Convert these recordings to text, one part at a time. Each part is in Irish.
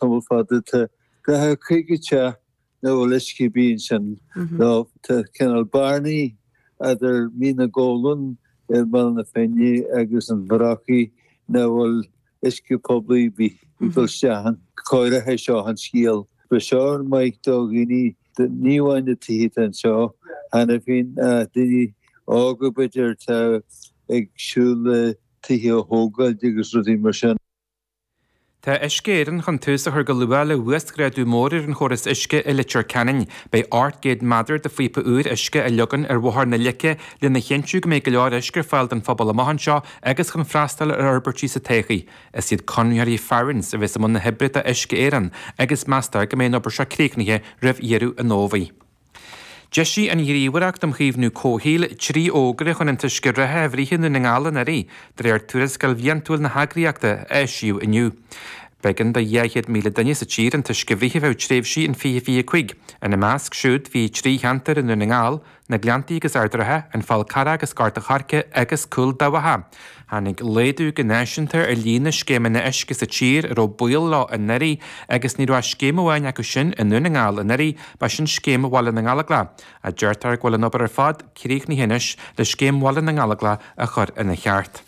tamall fada tá go leor ceantracha nach bhfuil uisce iontu ansin nó tá cineál bearnaí eadar Mín na gCuileann i mBéal na Finne agus an Bhrocaigh nach bhfuil uisce poiblí ar bith ag dul isteach ann agus é seo an scéal beag seo ar mhaith do dhaoine ní amháin na tithe tá anseo cheana féin ach daoine óga b'fhéidir atá ag siúl le tithe a thógáil agus rudaí mar sin. Tá Uisce Éireann chun tús a chur go luath le huasghrádú mór ar an chóras uisce i Leitir Ceanainn. Beidh ocht gcéad meadair de phíopa úir uisce a leagan ar Bhóthar na Leice lena chinntiú go mbeidh go leor uisce ar fáil don phobal amach anseo agus chun freastal ar fhorbairtí sa todhchaí. Is iad conraitheoirí Farrans a bheas i mbun na hoibre do Uisce Éireann agus meastar go mbeidh an obair seo críochnaithe roimh dheireadh an Fhómhair. D'eisigh an Ghníomhaireacht um Chaomhnú Comhshaoil trí fhógra chun an t-uisce reatha a bhruith i nDún na nGall anuraidh, de réir tuarascáil bhliantúil na heagraíochta, a eisíodh inniu. B'éigean do 200,000 duine sa tír an t-uisce a bhruith ar feadh tréimhsí in 20 25. Ina measc siúd bhí trí cheantar i nDún na nGall, Na Gleanntaí agus Ard Ratha, An Fál Carrach agus Gort an Choirce, agus Cúil Dabhcha. Tháinig laghdú go náisiúnta ar líon na scéimeanna uisce sa tír a raibh baol leo anuraidh agus ní raibh ach scéim amháin acu sin i nDún na nGall anuraidh, ba sin Scéim Bhaile na nGallóglach. Deirtear go bhfuil an obair ar fad críochnaithe anois le Scéim Bhaile na nGallóglach a chur ina ceart.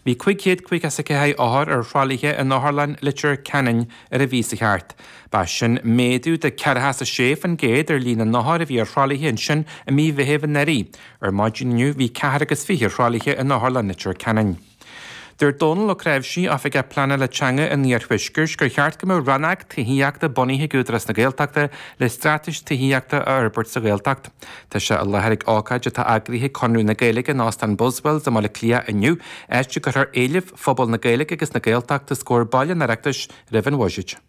Bhí 554 othar ar thralaithe in Otharlann Leitir Ceanainn ar an mhí seo caite. Ba sin méadú de 46% ar líon na n-othar a bhí ar thralaithe ansin i mí Mheithimh anuraidh. Ar maidin inniu bhí ceathrar is fiche ar thralaithe in Otharlann Leitir Ceanainn. Dúirt Dónal Ó Cnáimhsí, Oifigeach Pleanála Teanga an Iarthuaiscirt gur cheart go mbeadh Rannóg Tithíochta bunaithe ag Údarás na Gaeltachta le straitéis tithíochta a fhorbairt sa Ghaeltacht. Tá sé i láthair ag ócáid atá eagraithe ag Conradh na Gaeilge in Óstán Buswells i mBaile Cliath inniu, áit a gcuirfear éilimh phobal na Gaeilge agus na Gaeltachta os comhair baill an Oireachtais roimh an bhuiséad.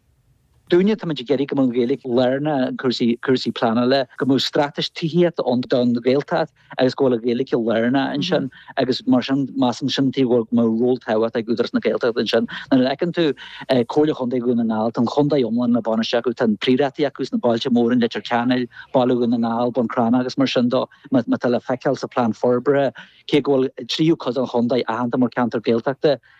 Dúinne, táimid ag iarraidh go mbeadh an Ghaeilge lárnach in cúrsaí, cúrsaí pleanála, go mbeadh straitéis tithíochta ann don Ghaeltacht agus go bhfuil an Ghaeilge lárnach ansin agus mar sin, measann muid go mbeadh ról tábhachtach ag Údarás na Gaeltachta ansin. Nuair a fheiceann tú Comhairle Chontae Dhún na nGall, tá an chontae iomlán le bainistiú acu, tá an prioráidí acu sna bailte móra, in Leitir Ceanainn, Baile Dhún na nGall, Bun Cranncha agus mar sin de. Mar atá le feiceáil sa Plean Forbartha, cé go bhfuil tríú cuid den chontae aitheanta mar ceantar Gaeltachta,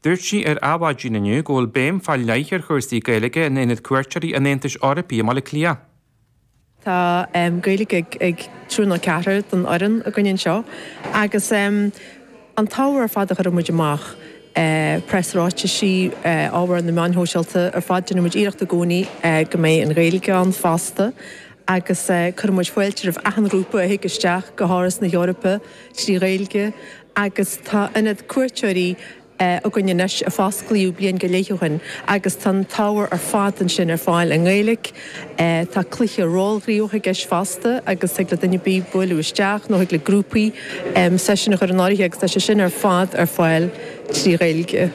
Dúirt sí ar Adhmhaidin inniu go bhfuil béim faoi leith ar chúrsaí Gaeilge in Ionad Cuairteoirí an Aontais Eorpaigh i mBaile Átha Cliath. Tá Gaeilge ag triúr nó ceathrar den fhoireann againn anseo agus an t-ábhar ar fad a chuirimid amach, preasráitisí, ábhar na meáin shóisialta, ar fad déanaimid iarracht i gcónaí go mbeidh an Ghaeilge ann fosta. agus cuireann muid fáilte roimh achan ghrúpa a thig isteach go hÁras na hEorpa trí Ghaeilge agus tá ionad cuairteoirí againn anois a fosclaíodh bliain go leith ó shin agus tá an t-ábhar ar fad ansin ar fáil i nGaeilge. Tá cluiche rólghníomhach i gceist fosta agus thig le duine ar bith bualadh isteach nó thig le grúpaí seisiún a chur in áirithe agus tá sé sin ar fad ar fáil trí Ghaeilge.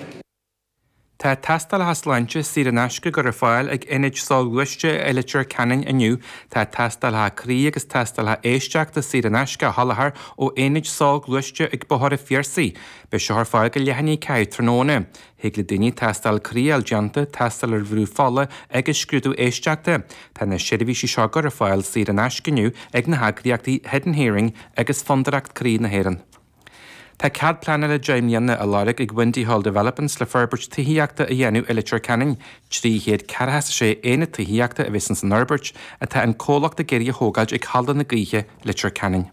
Tá tástálacha sláinte saor in aisce le cur ar fáil ag ionaid soghluaiste i Leitir Ceanainn inniu. Tá tástálacha croí agus tástálacha éisteachta saor in aisce á soláthar ó aonaid soghluaiste ag Bóthar an Phiarsaigh. Beidh seo ar fáil go leath i ndiaidh 4 tráthnóna. Thig le daoine tástáil croí a fháil déanta, tástáil ar bhrú fola agus scrúdú éisteachta. Tá na seirbhísí seo le cur ar fáil saor in aisce inniu ag na heagraíochtaí Hidden Hearing agus Fondúireacht Croí na hÉireann. Tá cead pleanála deich mbliana á lorg ag Windy Hall Developments le forbairt tithíochta a dhéanamh i Leitir Ceanainn. Trí chéad ceathracha a sé aonad tithíochta a bheas ins an fhorbairt atá an comhlacht ag iarraidh a thógáilt ag Halla na Gaoithe, Leitir Ceanainn.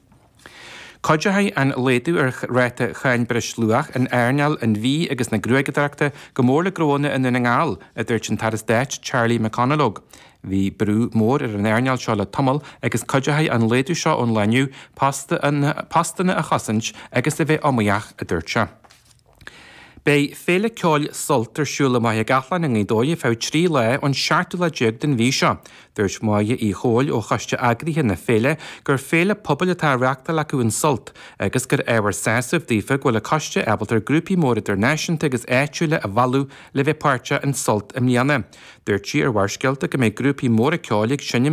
Cuideochaidh an laghdú ar ráta cháin breis luach in earnáil an bhídh agus na gruaigeadóireachta go mór le gnóanna i nDún na nGall, a dúirt an tAire Stáit Charlie McConalogue. Bhí brú mór ar an earnáil seo le tamall agus cuideoidh an laghdú seo lán postanna a chosaint agus a bheith iomaíoch, a dúirt sé. Beidh féile ceoil Sult ar siúl i Machaire Gathlán i nGaoth Dobhair ar feadh trí lá ón seachtú lá déag den mhí seo. Dúirt Máire Uí Chomhaill ó choiste eagraithe na féile gur féile pobail atá á reáchtáil acu in Sult agus gur ábhar sásaimh daofa go bhfuil an coiste ábalta grúpaí móra idirnáisiúnta agus áitiúla a mhealladh le bheith páirteach in Sult i mbliana. Dúirt sí ar Bharrscéalta go mbeidh grúpaí móra ceoil ag seinm